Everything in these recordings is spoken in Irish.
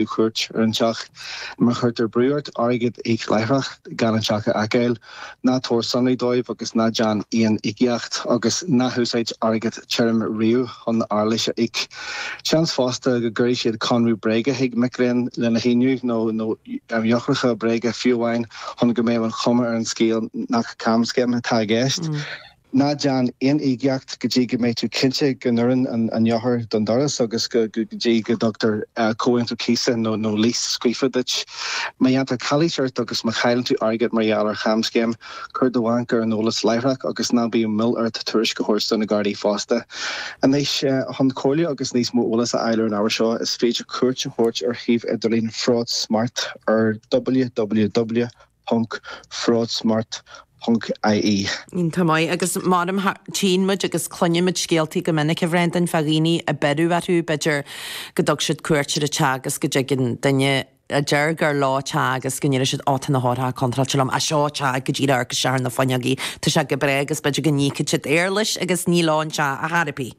Tabhair cuairt ar an teach. Má chuirtear brú ort airgead a íoc láithreach, gan an teach a fheiceáil, ná tabhair sonraí dóibh agus ná déan aon íocaíocht, agus ná húsáid airgead tirim riamh chun éarlais a íoc. Seans fosta go gcuirfidh siad conradh bréige chuig mic léinn lena shíniú, nó eochracha bréige fiú amháin, chun go mbeadh an chuma ar an scéal nach camscéim atá i gceist. Ná déan aon íocaíocht go dtí go mbeidh tú cinnte go n-oireann an eochair don doras agus go dtí go dtugtar comhaontú cíosa nó léas scríofa duit. Má dhéantar calaois ort agus má chailleann tú airgead mar gheall ar chamscéim, cuir do bhanc ar an eolas láithreach agus ná bíodh moill ort tuairisc a thabhairt do na Gardaí fosta. Anois, chun comhairle agus níos mó eolais a fháil ar an ábhar seo, is féidir cuairt a thabhairt ar shuíomh idirlín FraudSmart ar www. ponc, fraudsmart, ponc, ie. Tá maith agus mar a deirim. Tchíonn muid agus cluineann muid scéaltaí go minic, a Bhreandáin, fá dhaoine ar beireadh orthu, b'fhéidir, go dtug siad cuairt ar an teach agus go dtigeann duine a deir gur leo an teach agus go ndeireann siad 'Ó, tá na heochracha contráilte liom, á, seo an teach go díreach amharc isteach ar na fuinneogaí, tá sé go breá' agus b'fhéidir go n-íocann siad éarlais agus ní leo an teach ar chor ar bith.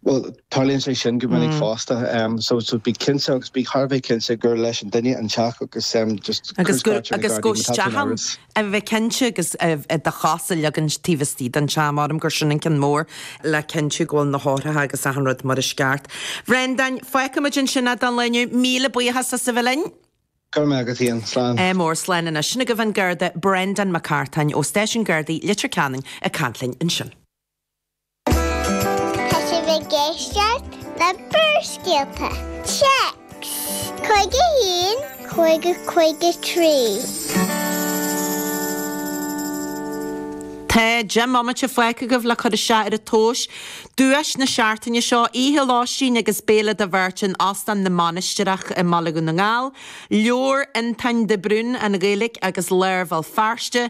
Bhuel, tarlaíonn sé sin go minic fosta. So, so bí cinnte agus bí thar a bheith cinnte gur leis an duine an teach agus just Agus go, agus go, is dóigh liom, a bheith cinnte agus do chos a leagan taobh istigh den teach, measaim gur sin an ceann mór le cinntiú go bhfuil na heochracha agus achan rud mar is ceart. Brendan, fágfaidh muid ansin é don lá inniu. Míle buíochas as a bheith linn. Go raibh maith agat, Iain. Slán. Go mór, slán anois. Sin agaibh an Garda, Brendan Mac Cartáin ó Stáisiún Gardaí Leitir Ceanainn ag caint linn ansin. Tá sibh ag éisteacht le Barrscéalta, Téacs, cúig a haon, cúig a cúig a trí. Tá deich mbomaite fágtha agaibh le cur isteach ar an tomhas. Duais na seachtaine seo, oíche lóistín agus béile do bheirt in Óstán na Mainistreach i mBaile Dhún na nGall, leabhar Fhionntáin de Brún, An Ghaeilge agus Lár Bhéal Feirste,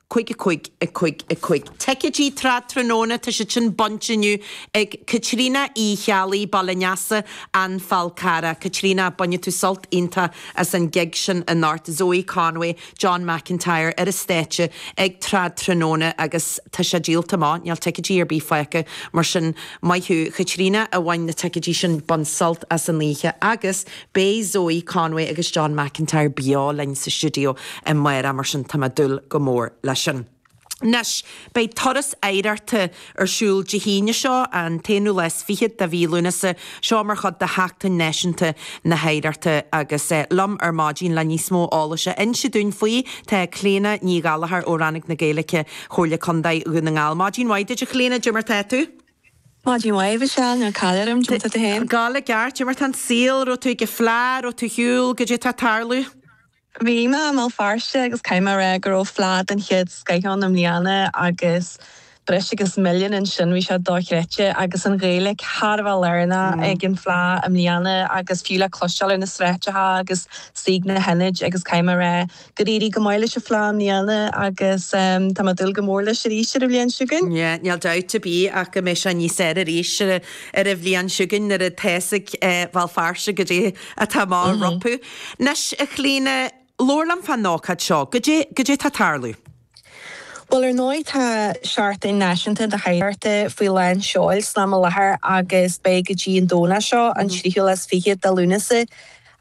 Cúig, cúig, cúig, cúig. Ticéidí Trad Tráthnóna, tá siad sin bainte inniu ag Caitríona Uí Cheallaigh, Baile Neasa, An Fál Carrach. Caitríona, bainfidh tú sult iontach as an gig sin anocht. Zoe Conway, John McIntyre ar an stáitse ag Trad Tráthnóna agus tá sé díolta amach, níl ticéidí ar bith fágtha. Mar sin, maith thú a Chaitríona a bhain na ticéidí sin, bain sult as an oíche agus. Beidh Zoe Conway agus John McIntyre beo linn sa stiúideo amárach mar sin tá mé ag dúil go mór leis sin. Anois, beidh Turas Oidhreachta ar siúl Dé hAoine seo, an t-aonú lá is fichead de mhí Lúnasa, seo mar chuid de Sheachtain Náisiúnta na hOidhreachta agus liom ar maidin le níos mó eolais a inse dúinn faoi tá Clíodhna Ní Ghallachair ó Rannóg na Gaeilge, Chomhairle Contae Dhún na nGall. Maidin mhaith duit a Chlíodhna, caidé mar tá tú? Maidin mhaith a Mhichelle, níl caill orm, goidé mar tá tú féin? Gabháil i gceart, goidé mar tá an saol, raibh tú ag fleá, raibh tú ar shiúl, goidé tá ag tarlú? Bhí mé i mBéal Feirste agus caithfidh mé a rá go raibh fleá den chéad scoith ann i mbliana agus breis agus milliún ansin, bhí sé dochreidte agus an Ghaeilge thar a bheith lárnach ag an fhleá i mbliana agus fiú le cloisteáil ar na sráideacha agus istigh sna hionaid agus caithfidh mé a rá Gur éirigh go maith leis an Fhleá i mbliana agus tá mé ag dúil go mór leis arís ar an bhliain seo chugainn. Níl dabht ar bith ach go mbeidh sé níos fearr arís ar an bhliain seo chugainn nuair atá a fhios ag Béal Feirste goidé atá amach rompu. Anois, a Chlíodhna, labhair liom fán ócáid seo. Goidé atá ag tarlú? Bhuel, ar ndóigh, tá seachtain náisiúnta na hoidhreachta faoi lán seoil san am i láthair agus beidh go dtí an Domhnach seo, an 23ú de Lúnasa,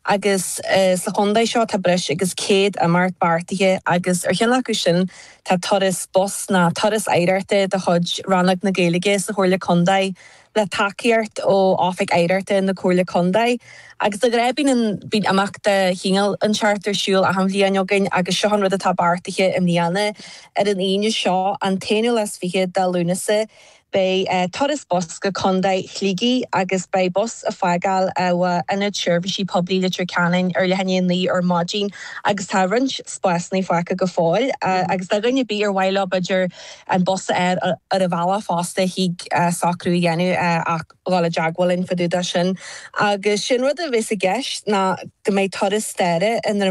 agus sa chontae seo tá breis agus 100 imeacht beartaithe agus ar cheann acu sin tá turas bus, nó turas oidhreachta de chuid Rannóg na Gaeilge sa Chomhairle Contae, le tacaíocht ó Oifig Oidhreachta na Comhairle Contae agus de ghnáth bíonn imeacht de chineál inteacht ar siúl achan bhliain againn agus seo an rud atá beartaithe i mbliana. Ar an Aoine seo, an 21ú de Lúnasa, beidh turas bus go Contae Shligigh agus beidh bus ag fágáil ó Ionad Seirbhísí Poiblí Leitir Ceanainn ar leath i ndiaidh a naoi ar maidin agus tá roinnt spásanna fágtha go fóill agus do dhuine ar bith ar mhaith leo b'fhéidir an bus ar a bhealach fosta thig socrú a dhéanamh ach dhul i dteagmháil linn fá dtaobh de sin agus sé an rud a bheas i gceist ná go mbeidh turas staire i